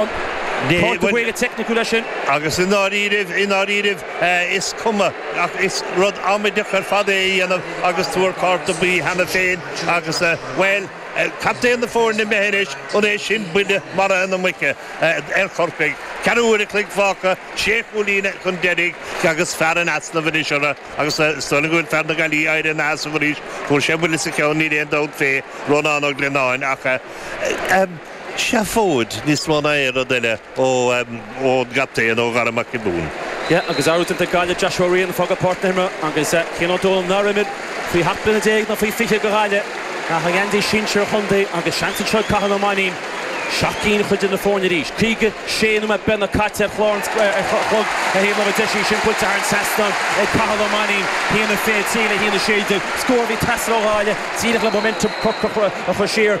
Cárta dearg teicniciúil é sin. Agus i ndáiríribh, i ndáiríribh, is cuma ach is rud amaideach ar fad é a dhéanamh agus tú ar cárta buí cheana féin agus, bhuel, captaen na foirne imithe anois, an é sin buille maraithe na muice ar Chorcaigh? Ceathrú uaire an chloig fágtha, sé chúilín chun deiridh agus fear in easnamh anois orthu agus is dóigh liom go bhfuil fear na Gaillimhe ag éirí ina sheasamh arís. Fuair sé buille sa cheann, níl aon dabht fé, Rónán Ó Glionnáin, ach. seafóid, níos mó ná aon rud eile, ó, em, ón gcaptaen, ó Dhara Mac Giobúin. Yeah, agus athrú déanta ag Gaillimh, Joshua Riain, ag fágáil páirc na himeartha, agus, eh, Cian Ó Dónaill nár imir faoi sheacht mbliana déag nó faoi fiche go Ghaillimh ach an geansaí sinsir a chontae agus seans anseo ag Cathal Ó Mainnín seacht gcinn a chur idir na foirne arís. Caoga sé nóiméad beagnach caite ar chlár an, eh, ar chlog a haon lá deis í sin buailte thar an trasnán ag Cathal Ó Mainnín, haon a fiche trí le haon a sé déag scór a bhí ag teastáil ó Ghaillimh díreach le momentum Chorcaí a chur siar.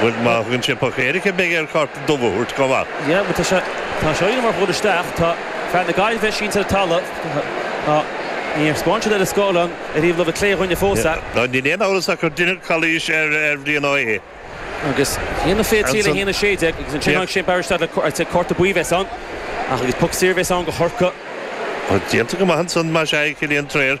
Bhuel, má thugann sé puc éirice, beidh air cárta dubh a thabhairt chomh maith. Yeah, bhuel, tá sé, tá sé oighir mar dhul isteach, tá fear na Gaillimhe sínte ar an talamh, tá, níor thaispeáin siad ar an scáileán ar thaobh láimhe clé dhínn fós é. Ná níl aon amhras ach gur deineadh calaois ar Bhrian Ó hAodha. Agus Fianna Fé 3-16 agus ansin tháinig Shane Barry isteach le, sea, cárta buí a bheas ann ach agus puc saor a bheas ann go Chorcaigh. Tá déanta go maith ansan más ea ag Cillian Trayers.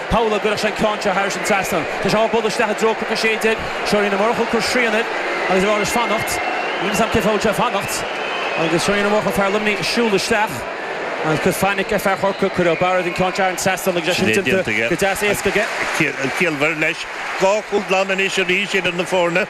Paula, go gcuirfeadh sé an ceann seo thairis an trasnán. Tá sé á bhogadh isteach i dtreo cnoc 16. Seo Johnny Ó Murchú ag cur srian air agus ag rá leis fanacht. Níl 'fhios a'm cén fáth a bhfuil sé ag fanacht. Agus seo Johnny Ó Murchú, fear Luimnigh, ag siúl isteach. Agus ag cur fainic ar fear Chorcaí. Cuirfidh Ó Bairéad an ceann seo thar an trasnán agus é sin déanta go deas éasca aige. Ciallmhar, leis. Dhá chúl glan anois arís idir na foirne.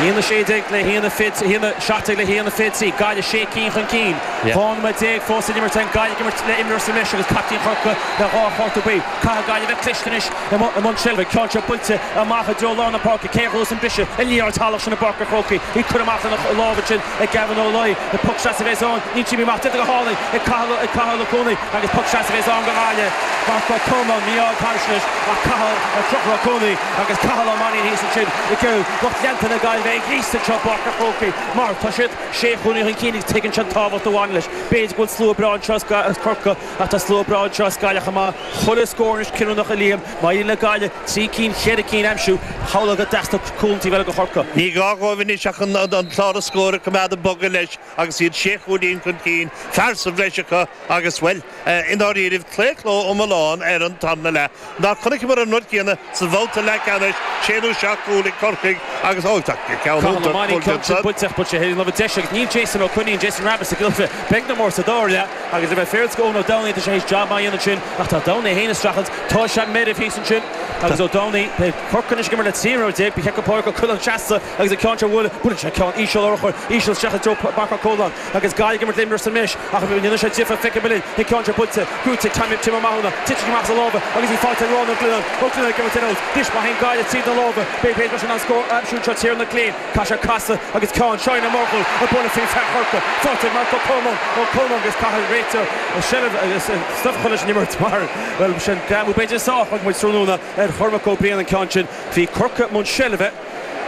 Haon a 16 le haon a, haon a 17 le haon a 23, Gaillimh sé cinn chun cinn. Dhá nóiméad déag fós le n-imirt agus Gaillimh ag imirt le imreoir sa mbreis agus captaen Chorcaí le dhá chárta buí. Caithfidh Gaillimh bheith cliste anois i mbun seilbhe. Ceann seo buailte amach i dtreo lár na páirce. Cé a gheobhas an briseadh an liathróid shalach sin i bPáirc a' Chrócaigh? Í curtha amach ina lámh ansin. ag Gavin Ó Laoi, le poc sleasa a bheas ann, í imithe amach. Déanta go hálainn ag Cathal ag Cathal Ó Cuanaigh agus poc sleasa a bheas ann go Ghaillimh, Mark Ó Colmáin, mí-ádh taisneis ach Cathal ag Conchúr Ó Cuanaigh agus Cathal Ó Mainín thíos ansin ag iarraidh lucht leanta na Gaillimhe a ghríosadh anseo i bPáirc an Chrócaigh mar tá siad sé chúilín chun cinn agus tuigeann siad an tábhacht a bhaineann leis B'fhéidir go bhfuil slua breá anseo as Corcaigh ach tá slua breá anseo as Gaillimh chomh maith Chuile scór anois cinniúnach a Liam, má éiríonn le Gaillimh. trí cinn, cheithre cinn a aimsiú, shamhlófá go dteastódh cúl an taobh eile ó Chorcaigh. Ní gá dhóibh anois ach an clár scór a choimeád ag bogadh leis agus iad sé chúilín chun cinn, fear sa bhreis acu agus, bhuel, i ndáiríribh, claochló iomlán ar an tarna leath. Nár chonaiceamar an rud céanna sa bhabhta leathcheannais, sé nó seacht gcúl ag Corcaigh agus, ó, tá ceann Cathal Ó Mainín cion sin bainte ach buailte ar an láimhe deise ag Neil Jason Ó Coinín, Jason Rabbitte sa gcluiche. Beidh na mairt sa dara leath agus, le bheith fíor go Eoin Ó Domhnaill, tá sé théis jab maith a dhéanamh ansin ach tá Domhnaill é féin ag streachailt Tá sean méir ar thíos annsin agus Ó Dúnaigh beidh Corcaigh anois ag imirt le trí nóiméad déag. Ba cheart go Pádraig Ó Coileáin seasta agus an ceann seo a bhuaileadh. Buaileann sé ceann íseal urchar íseal isteach i dtreo Marc Ó Colmáin agus Gaillimh ag imirt le imreoir sa mbreis ach an ndéanann sé difir feicfidh muid linn an ceann seo buailte brúite ag Tim Tim Ó Mathúna. Titeann sé amach as a lámha agus í faighte ag Rónán Ó Cuileáin. Ó Cuileáin ag imirt in aut. Anois má théann Gaillimh tríd na lámha b'fhéidir leis an an scór a aimsiú anseo Tiernan Killeen chaith sé casadh agus ceann Seáin Ó Murchú ag buaileadh fríd fear Chorcaí. Faighte ag Marc Ó Colmáin Ó Colmáin agus caithfidh réiteoir seilbh agus stuif chun leis an imirt mar. Bhuel, b'shin greamú b'fhéidir. Só, thug muid tráthnóna ar Chormac Ó Briain an ceann sin. Bhí Corcaigh i mbun seilbhe,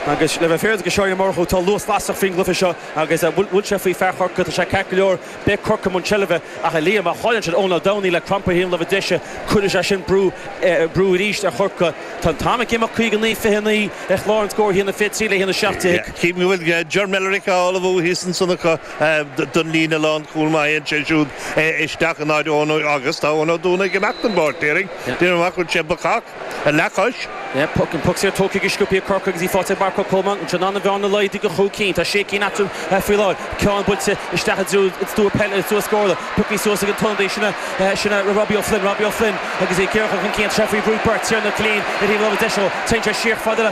agus le bheith féaráilte do Sheán Ó Murchú, tá luas lasrach faoin gcluiche seo agus an bhfuil sé faoi fear Chorcaí? Tá sé ceart go leor. Beidh Corcaigh i mbun seilbhe, ach a Liam, má chailleann siad Eoin Ó Dúnaigh le crampa ar thaobh na láimhe deise, cuirfidh sé sin brú, brú arís ar Chorcaigh. Tá an t-am ag imeacht, 59, 29 ar chlár an scóir, a haon a fiche 3 le haon a seacht déag. Ceapaim go bhfuil Ger Millerick á ullmhú thíos ansan acu. don líne lánchúil má théann sé siúd isteach in áit Eoin agus. Tá Eoin Ó Dúnaigh ag imeacht den bpáirc, déarfainn. Déarfainn amach go bhfuil sé bacach, ar leathchois. Poc an poc saor tógtha ag Sciopaí Corcaigh agus í faighte ag Marc Ó Colmáin. An seans an bhearna a laghdú go cúig cinn. Tá sé cinn eatarthu faoi láthair. Ceann buailte isteach i dtreo peile sa scóranna. Pioctha suas ag an ionadaí. Sin é Robbie O'Flynn. Robbie O'Flynn agus é ag iarraidh a chur chun cinn. Treif faoi bhrú beirt Tiernan Killeen ar thaobh láimhe deise dhó. Téann sé siar fad le.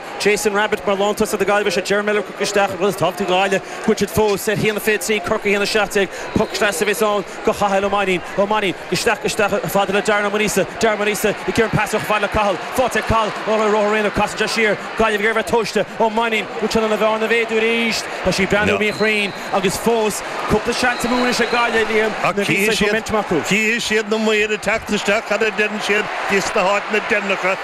Jason Rabbitte mar lántosaí na Gaillimhe. Seo Ger Millerick ag dul isteach ar Ghaeltacht Uí Ghadhra. Gaillimh fós a haon a fiche 3, Corcaigh 1, 17. Poc sleasa a bheas ann do Chathal Ó Mainnín. Ó Mainnín isteach, isteach chomh fada le Darren Ó Muiríosa. Darren Ó Muiríosa ag cur an phas chomh fada le Cathal. Faighte ag Cathal ó Ghaoth Dobhair aréir. Casann sé siar. Gaillimh ag iarraidh a bheith tomhaiste. Ó Mainnín ag iarraidh an bhearna a mhéadú arís. Tá sí ag breathnú míchruinn agus fós cúpla seans amú anois ag Gaillimh, Liam, nuair a bhí saghas momentum acu. Ach cé hiad na maoir ag teacht isteach? Cad a deireann siad di sna háiteanna deireanacha?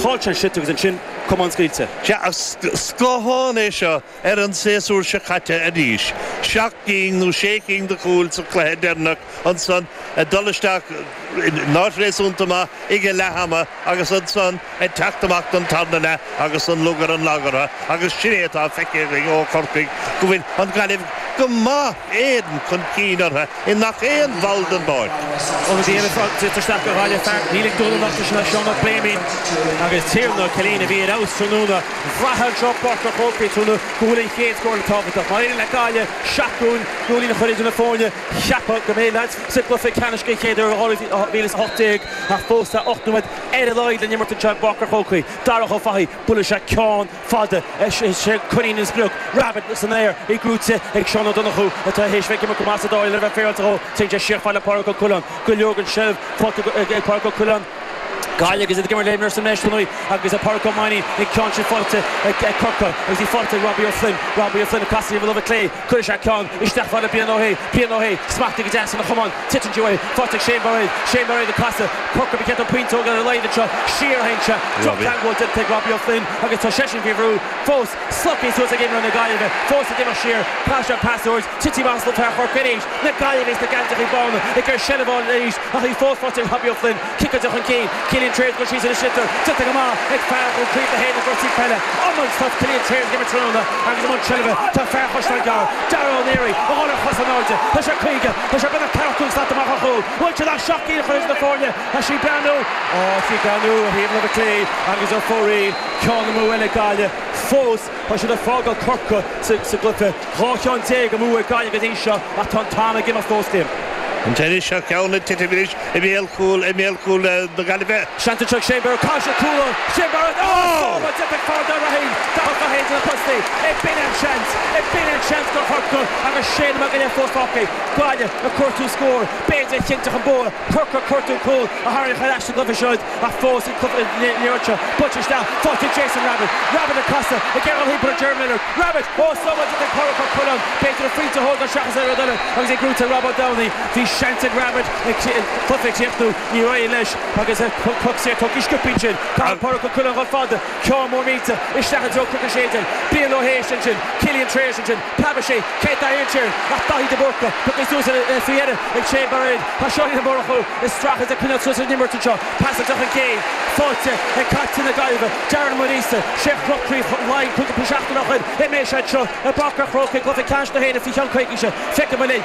Chaill sé an site agus ansin camán scaoilte. Sea, ach scáthán é seo ar an séasúr seo caite arís. Seacht gcinn nó sé cinn de chúil sa chluiche deireanach ansan ag dul isteach in áit réasúnta maith ag a leath ama agus ansan ag teacht amach don tarna leath agus an lug ar an lag orthu agus sin é atá feicthe againn ó Chorcaigh go bhfuil an Ghaillimh go maith Éireann chun cinn orthu i ngach aon bhall den bpáirc. Óna dhein an Frog dul isteach go Ghaillimh Fear, níl ag dul an nochtadh sin as Seán Mac Réamoinn agus Tiernan Killeen a bhí ar fheabhas tráthnóna. Bhraithfeá anseo Páirc an Chrócaigh tráthnóna go bhfuil an chéad scór eile tábhachtach. Má éiríonn le Gaillimh an seachtú cúilín a chur idir na foirne, cheapfá go mbeidh leathchos sa gcluiche ceannais den chéad uair ó 2018 ach fós tá ocht nóiméad ar a laghad le n-imirt anseo i bPáirc an Chrócaigh. Darach Ó Fathaigh, buaileann sé ceann. fada é sin, Coinín an sprioc, Rabbitte san aer, í brúite ag Seán Ó Donnchú atá théis bheith ag imirt go maith sa dara leath le bheith féaráilte dhó. Téann sé siar fad le Pádraic Ó Coileáin go leor den tseilbh faighte ag Pádraic Ó Coileáin, Gaillimh agus iad ag imirt le imreoir sa mbreis anois agus Pádraic Ó Mainín an ceann sin faighte ag Corcaigh agus í faighte ag Robbie O'Flynn, Robbie O'Flynn ag casadh ar an láimh chlé. Cuireann sé ceann isteach fada Brian Ó hAodha, Brian Ó hAodha, smachtaithe go deas ina chamán, titeann sí uaidh, faighte ag Shane Bairéad, Shane Bairéad ag casadh, Corcaigh ag ceann an phointeog ar a laghad anseo, siar a théann sé, drochcheangal déanta ag Robbie Ó Floinn agus tá seisean faoi bhrú fós, slogtha suas ag imreoirí na Gaillimhe, fós ag imeacht siar, Pas ar pas ard, Titfidh amach sa treo Chorcaigh arís, na Gaillimhigh sna geansachaí bána ag cur seilbh ar ais ach í fós faighte ag Robbie Ó Floinn, Ciceáilte chun cinn, Cillian Trayers ag dul síos agus sliotar fite go maith ag fear Dhún Chaoin le haghaidh na gcúrsaí peile. Iománaíocht atá Cillian Trayers ag imirt tráthnóna agus i mbun seilbhe tá fear Chaisleán Gearr, Dara Ó Náraigh, a dhul ar chos in airde. Tá sé caoga, tá sé beagnach ceathracha cúig slat amach ó chúl. Bhfuil sé in ann seacht gcinn a chur idir na foirne. Tá sí breathnú. Tá sí breathnú ó thaobh na láimhe clé agus ar fóraoil. Ceann amú eile ag Gaillimh fós. Tá siad ag fágáil Corcaigh sa gcluiche. Dhá cheann déag amú ag Gaillimh go dtí seo ach tá an t-am ag imeacht ós cionn. An t-inis seo ceann ag titim anois i mbéal cúil i mbéal cúil na Gaillimhe. Seans anseo ag Shane Barrett, caithfidh sé cúl ó Shane Barrett, áit a bhfuil an deis ag Fear Dáimhe Fhéin, Darach idir na postaí. Ó b'in é an seans, b'in é an seans do Chorcaigh agus sé nóiméad go leith fós fágtha, Gaillimh ag cuartú scóir b'fhéidir a chinnteodh an bua. Corcaigh ag cuartú cúl a tharraingeodh ar ais sa gcluiche siúd ach fós ag cur an liathróid seo buailte isteach fada ag Jason Rabbitte. Rabbitte ag casadh ag imeacht timpeall ar Ger Millerick. Rabbitte, ó is iomaí duit ag cuartú cúl ann, b'fhearr dó a phointe a thógáil seachas aon rud eile agus é brúite ag Rob Ó Dúnaigh. Bhí seans ag Rabbitte an cluiche a chríochnú, níor éirigh leis agus poc saor tugtha sciobtha ansin. Caithfidh Pádraic Ó Coileáin dhul fada, ceann mór millteach isteach i dtreo Chorcaigh séideán. Brian Ó hAodha ansin, Cillian Trayers ansin. Preabann sé, cé atá ansin ach Dáithí de Búrca, pioctha suas faoi dheireadh ag Shane Bairéad. Tá Johnny Ó Murchú ag strachailt ag coinneáil suas leis an imirt anseo, pas ard chun cinn, faighte ag caiptín na Gaillimhe, Darren Ó Muirgheasa, sé a chroch Craobh Laighean cúpla seachtain ó shoin, uime seo anseo i bPáirc a' Chrócaigh, Cluiche Ceannais na hÉireann faoi cheann coicíse, feicfidh muid linn.